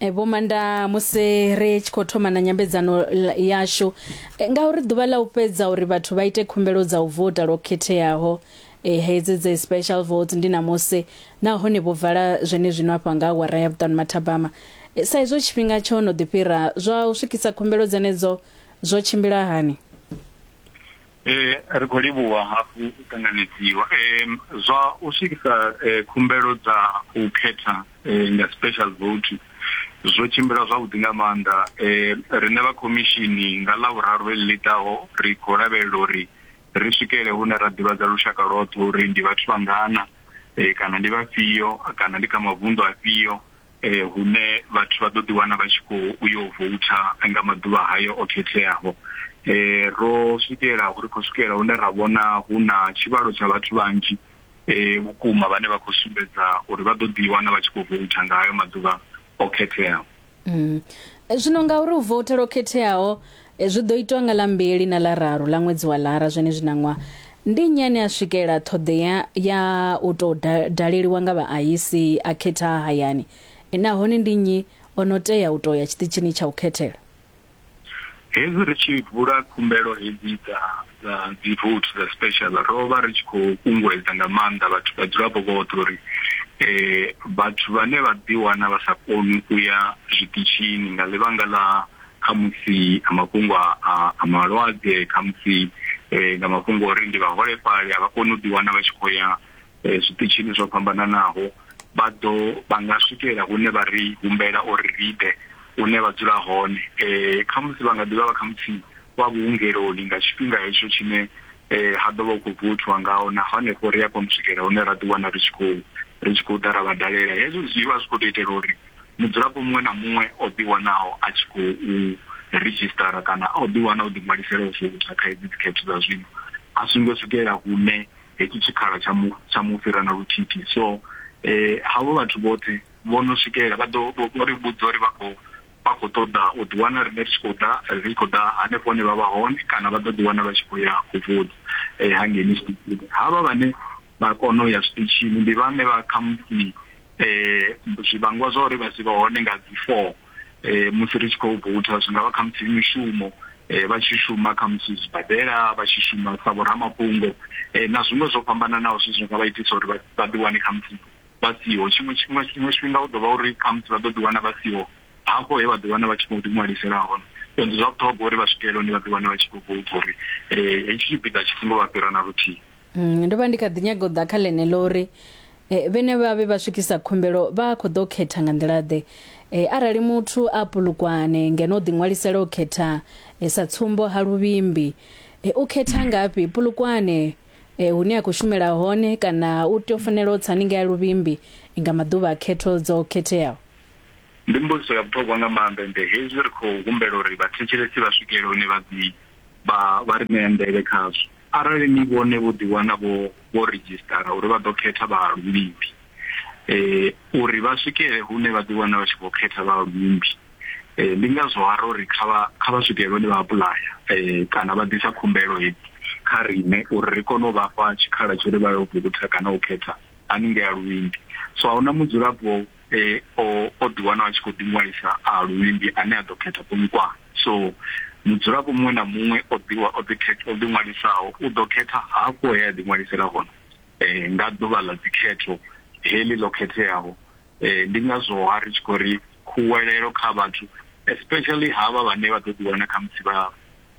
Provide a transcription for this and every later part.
E, vho manda musi ri tshi khou thoma na nyambedzano l- yashu e, ngauri ḓuvha ḽa u fhedza uri vhathu vha ite khumbelo dza u vota lwo khetheaho e, hedzi dze special vote ndi namusi nahone vho vala zwene zwino afha nga awara ya vhuṱanu mathabama e, sa izwo tshifhinga tsho no ḓi fhira zwa u swikisa khumbelo dzenedzo zwo tshimbila hani Eh, ri khou livhuwa hafhu u ṱanganedziwa eh, zwa u swikisa eh, khumbelo dza u khetha eh, nga special vote zwo tshimbila zwavhuḓi nga maanḓa eh, riṋe vha khomishini nga ḽa vhuraru eḽi ḽi ḓaho ri khou lavhelela uri ri swikele hune ra ḓivhadza lushaka lwoṱhe uri ndi vhathu vhangana eh, kana ndi vhafhio kana ndi kha mavunḓu afhio eh, hune vhathu vha ḓo ḓi wana vha tshi khou uyo voutha nga maḓuvha hayo o khetheaho eh ro swikela uri khou swikela hune ra vhona hu na tshivhalo tsha vhathu vhanzhi eh vhukuma vhane vha khou sumbedza uri vha ḓo ḓi wana vha tshi khou voutha nga hayo maḓuvha o khetheaho mm. zwino ngauri u voutha lwo khetheaho Zwi ḓo itwa nga ḽa mbili na ḽa raru ḽa ṅwedzi wa Lara zwenezwi na ṅwaha. Ndi nnyi ane a swikela ṱhoḓea ya u tou daleliwa nga vhaaisi a khetha ha hayani, nahone ndi nnyi o no tea u tou ya tshiṱitshini tsha u khethela? Hezwi ri tshi vula khumbelo hedzi dza dza dzivouthi dza special, ro vha ri tshi khou kunguwedza nga maanḓa vhathu vhadzulapo vhoṱhe uri vhathu vhane vha ḓiwana vha sa koni u ya zwiṱitshini nga ḽivhanga ḽa khamusi a mafhungo a a malwadze khamusi eh, nga mafhungo ori ndi vhaholefhali a vha koni u ḓiwana vha tshi khou ya eh, zwiṱitshini zwo fhambananaho vha ḓo vha nga swikelela hune vha ri humbela uri ri ḓe hune vha dzula hone eh, khamusi vha nga ḓivha vha khamusi vha vhuungeloni nga tshifhinga hetsho tshine eh, ha ḓo vha u khou vuthiwa ngaho na hanefho ri a kona u swikelela hune ra ḓiwana ri tshi khou ri tshi khou ḓa ra vha dalela hezwo zwi vha zwi khou tou itela uri mudzulapo muṅwe na muṅwe o ḓiwanaho a tshi khou redzhisṱara kana o ḓiwana o ḓiṅwalisela u vouta kha hedzi dzikhetho dza zwino a songo swikelela hune hetshi tshikhala tsha mu tsha mu fhira na luthithi so eh havho vhathu vhoṱhe vho no swikelela vha ḓo vho ri vhudza uri vha khou vha khou ṱoḓa u ḓiwana riṋe ri tshi khou ḓa ri khou ḓa hanefho hune vha vha hone kana vha ḓo ḓiwana vha tshi khou ya u vouta eh hangei havha vhane vha kona u ya zwiṱitshini ndi vhane vha khamusi um zwivhangwa zwa uri vha si vha hone nga dzi four um musi ri tshi khou voutha zwi nga vha khamusi mishumo um vha tshi shuma khamusi zwibadela vha tshi shuma sa vhoramafhungo um na zwiṅwe zwo fhambananaho zwi zwi nga vha itisa uri vha ḓi wane khamusi vha siho tshiṅwe tshiṅwe tshiṅwe tshifhinga u ḓo vha uri khamusi vha ḓo ḓi wana vha siho hafho he vha ḓi wana vha tshi khou ḓi ṅwalisela hone so ndi zwa vhuṱhogwa uri vha swikelela hone vha ḓi wane vha tshi khou voutha uri um hetshi tshipiḓa tshi songo vha fhira na luthihi Mm, ndo vha ndi kha ḓi nyaga u ḓa kha ḽeneḽo uri eh, vhene vha vhe vha swikisa khumbelo vha khou ḓo khetha nga nḓila-ḓe eh, arali muthu a pulukwane ngeno o ḓiṅwalisela u khetha eh, sa tsumbo ha luvhimbi eh, u khetha ngafhi pulukwane eh, hune a khou shumela hone kana u tea u fanela u tsa haningei ha luvhimbi nga maḓuvha a khetho dzo khetheaho Ndi mbudziso ya vhuṱhogwa nga maanḓa ende hezwi ri khou humbela uri vhathetshelesi vha swikele hune vha ḓi vha vha ri ṋea nḓevhe khazwo. Arali ni vhone vho ḓiwana vho vho ridzhisṱara uri vha ḓo khetha vhahalulimbi uri vha swikele hune vha ḓiwana vha tshi khou khetha vhahalulimbi, ndi ngazwo ha ro ri kha vha kha vha swikele hune vha apuḽaya kana vha ḓisa khumbelo hedzi kha riṋe uri ri kone u vha fha tshikhala tsha uri vha yo vouta kana u khetha haningei ha luvhimbi. So a hu na mudzulapo e o o ḓi wana a tshi khou ḓi ṅwalisa a luvhimbi ane a ḓo khetha Polokwane so mudzulapo muṅwe na muṅwe o ḓi o ḓi khetha o ḓi ṅwalisaho u ḓo khetha hafho he a ḓi ṅwalisela hone eh nga ḓuvha ḽa dzikhetho heḽi ḽo khetheaho eh ndi ngazwo ha ri tshi khou ri khuwelelo kha vhathu especially havha vhane vha ḓo ḓi wana kha musi vha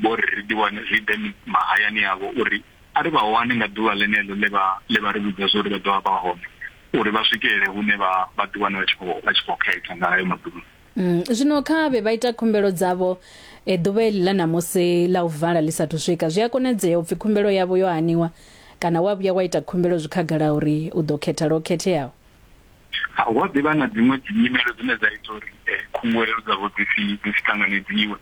vho ri ḓi wane zwi ḓe mahayani avho uri A ri vha wani nga ḓuvha ḽeneḽo ḽe vha ḽe vha ri vhudza zwa uri vha ḓo vha vha hone, uri vha swikelele hune vha vha ḓiwana vha tshi khou vha tshi khou khetha nga hayo maḓuvha. Zwino kha vhe vha ita khumbelo dzavho ḓuvha heḽi ḽa ṋamusi ḽa u vala ḽi sa athu swika. Zwi a konadzea u pfi khumbelo yavho yo haniwa kana wa vhuya wa ita khumbelo zwi khagala uri u ḓo khetha lwo khetheaho. Ha, hu a ḓi vha na dziṅwe dzinyimelo dzine dza ita uri eh, khunguwelelo dzavho dzi si dzi si ṱanganedziwe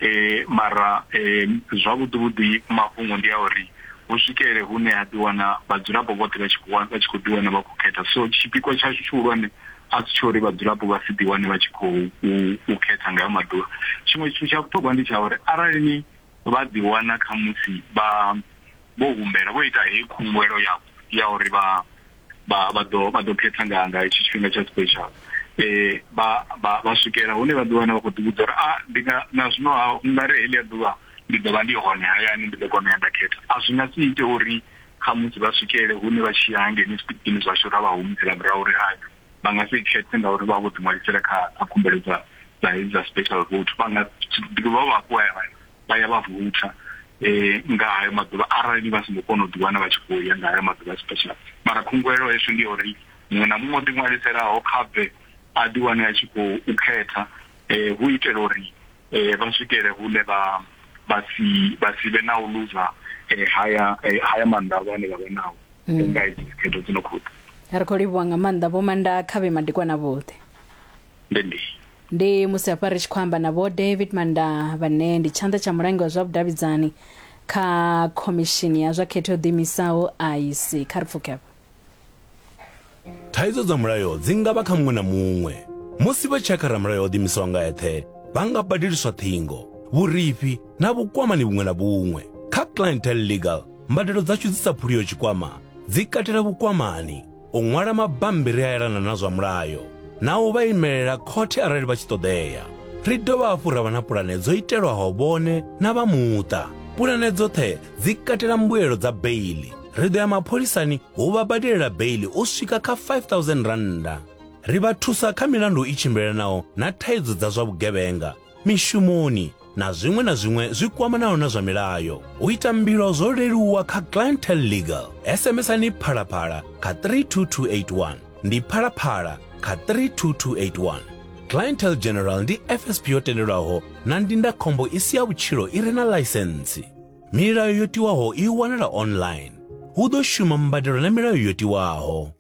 eh, mara eh, zwavhuḓi vhuḓi mafhungo ndi a uri hu swikele hune ha ḓi wana vhadzulapo vhoṱhe vha tshi khou wa- vha tshi khou ḓi wana vha khou khetha so tshipikwa tshashu tshihulwane a si tsho uri vhadzulapo vha si ḓi wane vha tshi khou u- u khetha nga hayo maḓuvha tshiṅwe tshithu tsha vhuṱhogwa ndi tsha uri arali ni vha ḓi wana khamusi vha vho humbela vho ita heyi khunguwelo ya ya uri vha vha vha ḓo vha ḓo khetha nga nga hetshi tshifhinga tsha special eh vha vha vha swikela hune vha ḓi wana vha khou ḓi vhudza uri a ndi nga na zwino ha nga ri heḽia ḓuvha ndi ḓo vha ndi hone hayani ndi ḓo kona u ya nda khetha a zwi nga si ite uri kha musi vha swikele hune vha tshi ya hangei zwiṱitshini zwashu ra vha humisela murahu uri hai vha nga si khethe ngauri vha vho ḓi ṅwalisela kha kha khumbelo dza dza hedzi dza special vote vha nga ḓi dovha vha vhafhu vha ya vha vha ya vha vutha eh nga hayo maḓuvha arali vha songo kona u ḓiwana vha tshi khou ya nga hayo maḓuvha special mara khunguwelo heswi ndi uri muṅwe na muṅwe o ḓiṅwaliselaho kha bve a ḓiwane a tshi khou khetha eh hu itela uri eh vha swikele hune vha vha si vha si vhe na u luza eh haya eh, haya maanḓa avho ane vha vha nao nga hedzi dzikhetho dzi no khou ḓa ri khou livhuwa nga maanḓa vho manda kha vhe madekwana vhoṱhe ndi ndi ndi musi hafha ri tshi khou amba na vho david manda vhane ndi tshanḓa tsha mulangi wa zwa vhudavhidzani kha khomishini ya zwa khetho yo ḓiimisaho ic kha ri pfuke hafha thaidzo dza mulayo dzi nga vha kha muṅwe na muṅwe musi vha tshakha ramulayo o ḓimisaho nga eṱhe vha nga badeliswa ṱhingo vhurifhi na vhukwamani vhuṅwe na vhuṅwe kha clientele legal mbadelo dzashu dzi sa phuliyo tshikwama dzi katela vhukwamani u ṅwala mabambiri a elana na zwa mulayo na u vha imelela khothe arali vha tshi ṱoḓea ri dovha hafhu ra vha na pulane dzo itelwaho vhone na vha muṱa pulane dzoṱhe dzi katela mbuelo dza beili ri ḓo ya mapholisani hu vha badelela beili u swika kha 5000 rannda ri vha thusa kha milandu i tshimbilelanaho na thaidzo dza zwa vhugevhenga mishumoni na zwiṅwe na zwiṅwe zwi kwamanaho na zwa milayo. U ita mbilo zwo leluwa kha Clientele Legal. SMSani Phalaphala kha 32281. Ndi Phalaphala kha 32281. Clientele General ndi FSP yo tendelwaho na ndindakhombo i si ya vhutshilo i re na ḽaisentsi. Milayo yo tiwaho i wanala online. Hu ḓo shuma mbadelo na milayo yo tiwaho.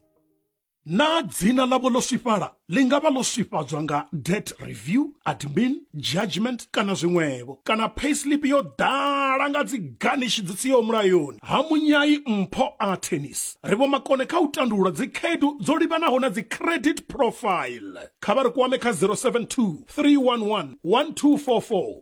Naa dzina ḽavho ḽo swifhala? Ḽi nga vha ḽo swifhadzwa nga debt review, admin, judgment kana zwiṅwevho. Kana payslip yo ḓala nga dzi garnish dzi siho mulayoni. Ha munyai mpho a tennis. Ri vhomakone kha u tandulula dzikhaedu dzo livhanaho na dzi credit profile. Kha vha ri kwame kha 072 311 1244.